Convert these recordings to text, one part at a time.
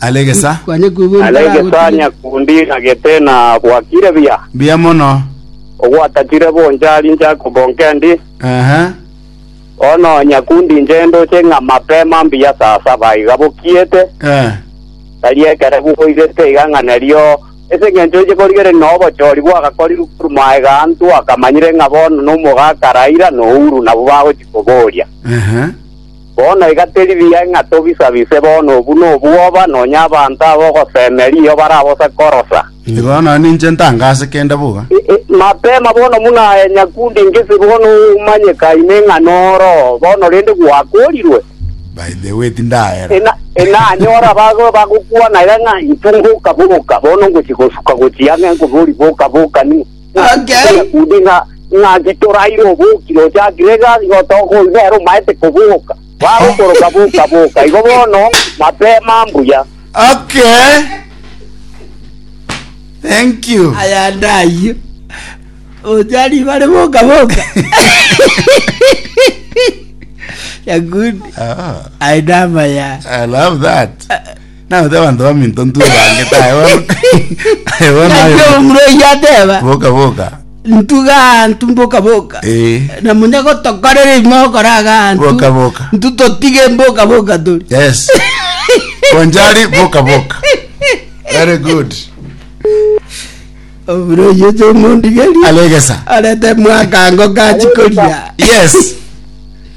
Alegesa. Kwanyakubu Alegesa nyakundi ng'agete na bwakire buya. Mbuya mono. Ogwatachire bonchari Jakobo nkendi. Ehe. Bono nyakundi inche ndoche ng'a mapema mbuya saa saba iga bokiete. Eh. Tari ekero bwoirete iga ng'a nerio ase engencho inche korigereria na obochori bwagakorirwe korwa maega anto akamanyire ng'a bono nomogaka Raira na Uhuru nabwo bagochi koboria. Ehe. Bono iga teri buya ng'a tobisa-bise bono obu nobwoba, nonya abanto ab'ogoseme riiyo barabose korosa. Bono ninche ntangase kende boka. Mapema bono buna aye nyakundi ngesi bono omanyeka ime ng'a noro bono rende gwakorirwe. By the way tindahera. Ena, ena anyore abagoe bagokwana iga ng'a, Intwe ngoka boka, bono ngochia gosuka gochia ang'e nkobori boka boka, ni. Okay. Omokundi ng'a ng'a getoraire obokire oche Agrega igo toka oyio nere omaete koboka. Bagokoroka boka boka igo bono mapema mbuya. Okay. Thank you. Aya ndayio. Oja ribare boka boka. Ya good. Ah, I love ya. I love that. Naote abanto baminto ntwe bange tae bono. Aye bono Naki aye. omorwoti ateba, Boka boka. ntuga aantu mboka boka. Eh. Na munya gotokorera ime okora agantu. Boka boka. Ntu totige mboka boka tori. Yes. Bonjari boka boka. Very good. Omorwoti oche omondigeri. Alegesa. Arete mwakango kachi koria. Yes.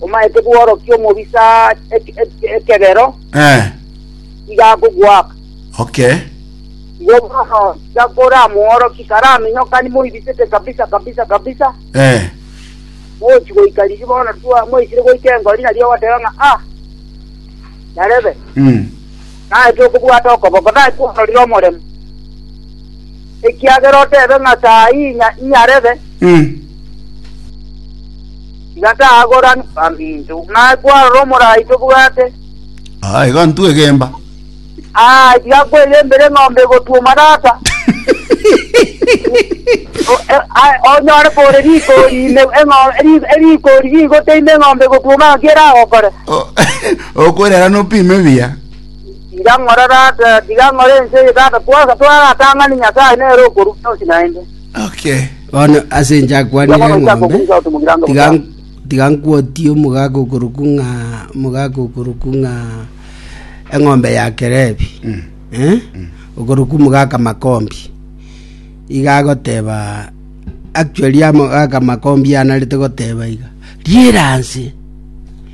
omaete bworokia omobisa ek- ek- ekebero, Eh, iga akogoaka. okay. Igo bono tiga koramworokie karaminyokani moibisete kabisa kabisa kabisa, Eh, mochi goika riria bono twa- mwaisire goika engori nario ogoteba ng'a ah, yarebe. mm. naete okobwata okoboko, nakwororire omoremo, ekiagera otebe ng'a saa eyio inya inyarebe, tiga tagorani baminto. Naye kwarora omorai tobwate, Ah, iga ntwe egemba. ah, tiga kwegembera eng'ombe egotuoma tata. O- e- a- onyore kore rigori ime eng'o- eri- erigori rigoteime eng'ombe egotuoma ng'aki eragokore. Oh. Okorera nopime buya. Inche ng'ore Tata, tiga ng'ore ense eye Tata twaye gatoratang'ani Nyasaye nere okorua bionsi naende. Okay. Bono ase inche akwanire Yakobo eng'ombe, akokurusa otumugire ange tiga, bosa. tiga nkwotie omogaka okoruku ng'a omogaka okoruku ng'a eng'ombe ya Kerebi Mm. eh? okoruku omogaka Makombi iga agoteba actually amogaka Makombi anarete goteba iga riera nse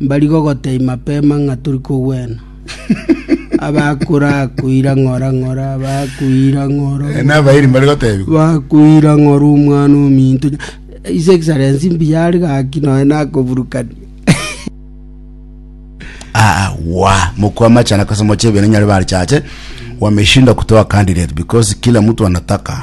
Mbari gogotebia mapema ng'a tori kogwena. Abakorakuira ng'ora ng'ora, bakuira ng'ora ng'ora. Ene abairi mbare gotebia. Bakuira ng'ora omwana ominto. His Excellency mbuya are gaki noe nakoburukania. Ah, wa mkwama chana kwa sababu chebe nyari bali chache wameshinda kutoa candidate because kila mtu anataka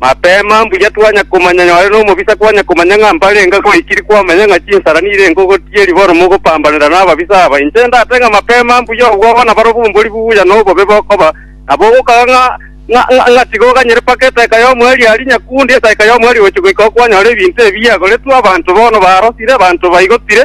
Mapema mbuya twanya komanya nyore nomobisa kwanya komanya ng'a mbarenge goikiri kwamanya ng'a chinsara nirenge ogotiga eriboro mogopambanera nababisa aba. Inche ndate ng'a mapema mbuya obwo abana barobo mbori buya nobobe bokoba nabo ogokaga ng'a ng'a ng'a tiga oganyere mpaka esaika y'omweri aria nyakundi esaika y'omweri gochi goika okwanyore ebinto ebi biagoretwe abanto bono barosire abanto baigotire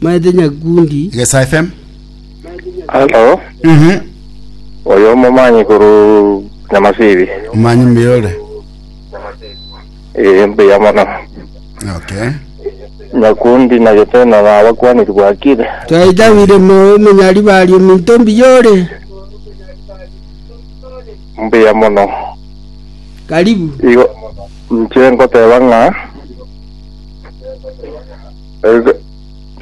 Maete Nyakundi. Igesa FM. Halo, Mhm. oyo omomanyi koru Nyamasibi. Omanyi mbuya ore. Eh, mbuya mono. Okay. Nyakundi na Giteno na abakwaniri bwakire. Twaitawire moyo omenyari bari ominto mbiyore. Mbuya mono. Karibu. Igo nche ngoteba ng'a Ege,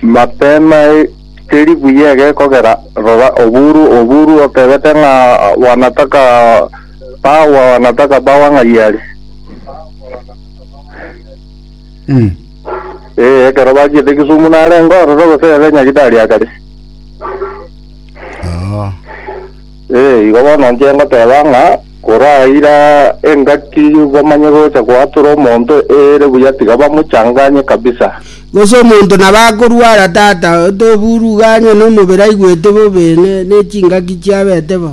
Matena e, teri buya egekogera, rora oburu oburu otebete ng'a wanataka bawa wanataka bawa ng'ai are. Mm. Eh, ekero bachiete Kisumu narengo ororo gose ere Nyagitari akare. Oh. Ee, igo bono inche ngoteba ng'a koraira engaki bamanye gocha goatora omonto ere buya tiga bamochanganye kabisa. Gose omonto nabo akorwara tata otoburuganywa nomobere aigwete bobe ne nechingaki chiabete bo.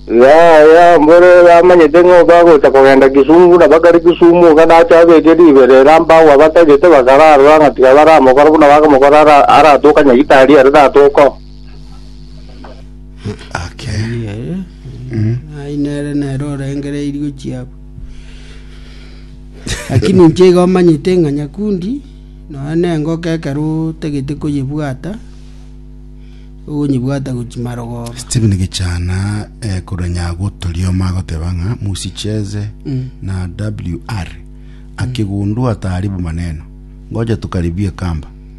Yaya, mbore bamanyete ng'a obe agocha kogenda Kisungu na bakare Kisumu iga nache abeke ribero ere ambe agwo abatagete bakararora ng'a tiga baramokora buna bakamokora ara aratoka Nyaitari ere tata okoo. Ake. Nere. Ai nere nere orengereirio chiabo. Lakini inche iga omanyete ng'a nyakundi nonya na engoka ekero otagete koyebwata ogonyebwata gochi marogoba. Stephen Gichana eh, korwa Nyagotorioma agoteba ng'a musicheze na WR akigundua taaribu maneno ngoja tukaribie kamba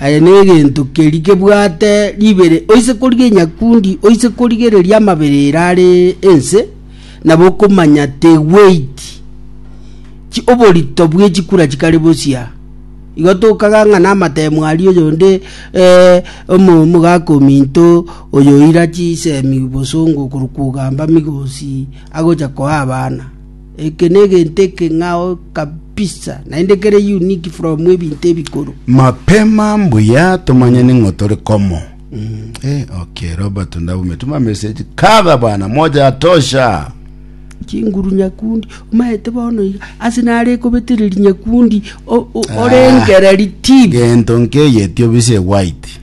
Aye negento keria kebwate ribere, oise korigia enyakundi, oise korigereria amabere ere are ense, nabo okomanya the weight chi oborito bwe chikura chikare bosia igo tokaga ng'a namatemu aria oyonde eh, omo- omogaka ominto oyo oira chisemi bosongo korwa kogamba migosi agocha koa abana Eke negento ekeng'ao kabisa, naende kere unique from ebinto ebikoro. Mapema mbuya tomanyane ng'o tore komo Eh, okay Robert Ndaume tuma message kadha bana moja yatosha chinguru nyakundi omaete bono iga ase nare kobetereri nyakundi o- o- orengereri tip gento nkeyetio bise white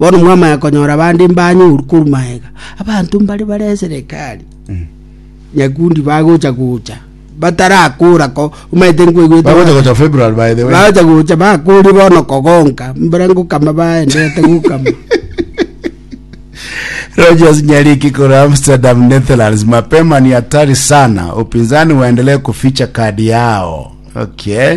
Bono mwamanya konyora bande mbanyoru korwa magega, abanto mbare bare eserekari nyakundi bagocha gocha batarakora ko omanyete nkoigwete Bagocha baka- gocha February by the way. bagocha gocha bakore bono kogonka mbare ngokama baendete gokama Rogers Nyariki kura Amsterdam, Netherlands. Mapema ni hatari sana, upinzani waendelee kuficha kadi yao. Okay.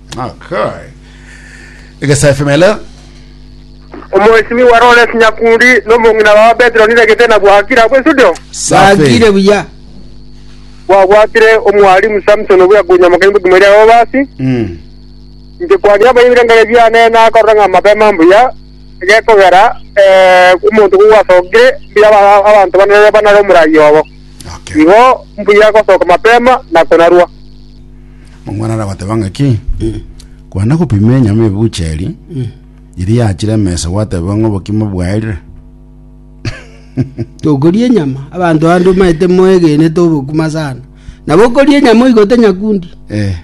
Okay. Egesa FM hello. Omwesimiwa Lawrence Nyakundi nomong'ina wa Petero niregete na bwakire abwo estudio. Safi. Bakire buya. Bwabwatire omwalimu Samson obuya kunyamokeni bokimo eria abo basi. Mm. Nje kwani abo ibirengere biane nakorora ng'a mabema mbuya gekogera eh omonto kogwasokire mbuya aba- abanto banare banare omurayi obo. Okay. Igo mbuya gosoka mapema na konarua. Omwana arabateba ng'aki, Kwana gopima enyama ebucheri, iri yachire emesa gwateba ng'a obokima bwaerire. Tokoria enyama abanto bande omanyete moegenete obokima sana nabo okoria enyama oigote nyakundi Eh,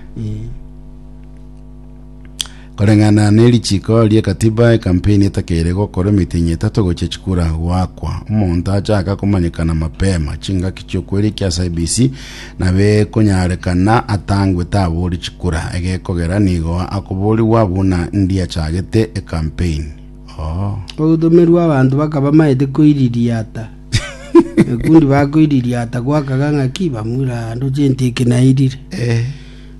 Koreng'ana nerichiko ri'ekatiba ekampeni etakeire gokora emitinyi etato gochia chikura goakwa. Omonto achaka komanyekana mapema chingaki chi'okwerekia ase IEBC nabekonyarekana atangwe tabori chikura egekogera nigo akoborigwa buna ndiachagete ekampeni. Oh. Ogotomerwa abanto bakaba bamaete koiririata ekundi bakoiririata goakaga ng'aki bamura ande oche intiki nairire. Eh.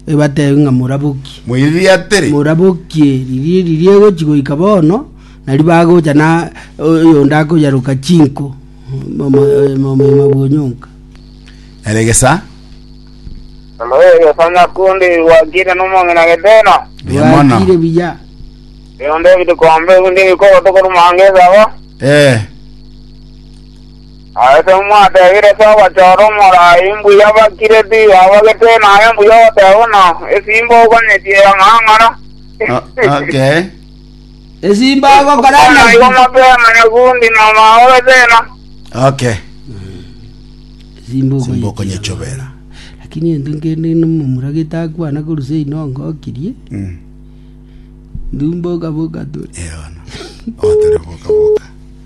ebateebie ng'a morabokie. Moiririe atere. Morabokie riria riria egochi goika bono, nario bagocha na oyonde akoyaroka chinko momoima bw'onyonka. Eregesa. Eregesa nyakundi gwakire nomong'ina getena. Buya mono. Gwakire buya. Eyonde ebidikombe ebinde ebikoro tokoruma ange esaba. Ee. Aase mwateebire ase ogochora omorai mbuya bakireti, abagete naye mbuya ogoteeba buna esimba oganyetie eng'ang'ara. O- okay. Esimba agokora Bono igo ng'aki? motema nyakundi na maobe tena. Okay. Simba Simba okonyechobera. Lakini ento nkende nomomura getakwana korusa inongo okirie. Mm. Ndumba okaboka tore. Eono. Otore boka boka.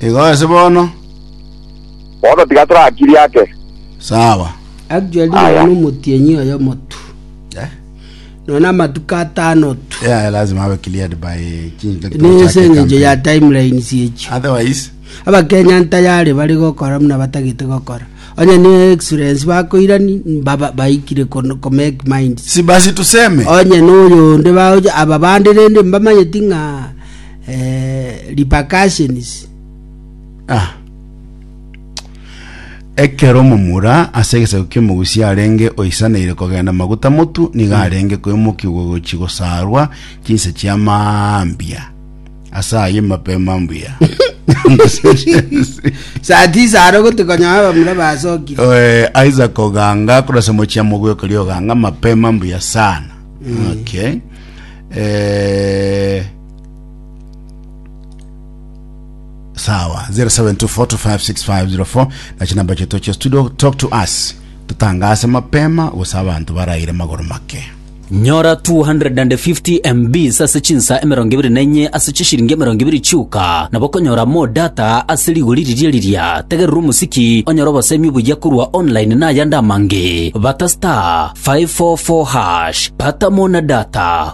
Igo ase bono, Bono tiga torakirie ake. sawa. Actually Aya. nonya nomotienyi oyo omotu Eh? nonya namatuko atano tu Yeah, yeah, lazima abe cleared by chinto nese tochake eng'encho ya campaign. timelines echi Otherwise, abakenya ntayari bari gokora muna batagete gokora onye ne excellence bakoirani baba- baikire kon- ko make mind si basi tuseme onye noyo onde baoja aba bande rende mbamanyeti ng'a eh, repercussions Ah. Ekero omomura ase egesaku ki'omogusi arenge oisaneire kogenda maguta motu, nigo arenge koimokigwa gochi gosaarwa chinse chia mambia. Ase aye mape mambia. saa tisa aro gotukonya abamura basokire Eh, Isaac Oganga kurasa mochia mogwekori Oganga mapema mbuya sana okay eh sawa 0724256504 na chinamba chetu cha studio talk to us tutangase mapema gusa abantu baraire magoro make nyora 250 mbs ase chinsa emerongo ebere na enye ase chishiringi emerongo ebere chiuka nabo okonyora mo data ase rigori riria riria tegerera omosiki onyore obosemi obuya korwa online na ayande amange bata star 544 hash bata mo na data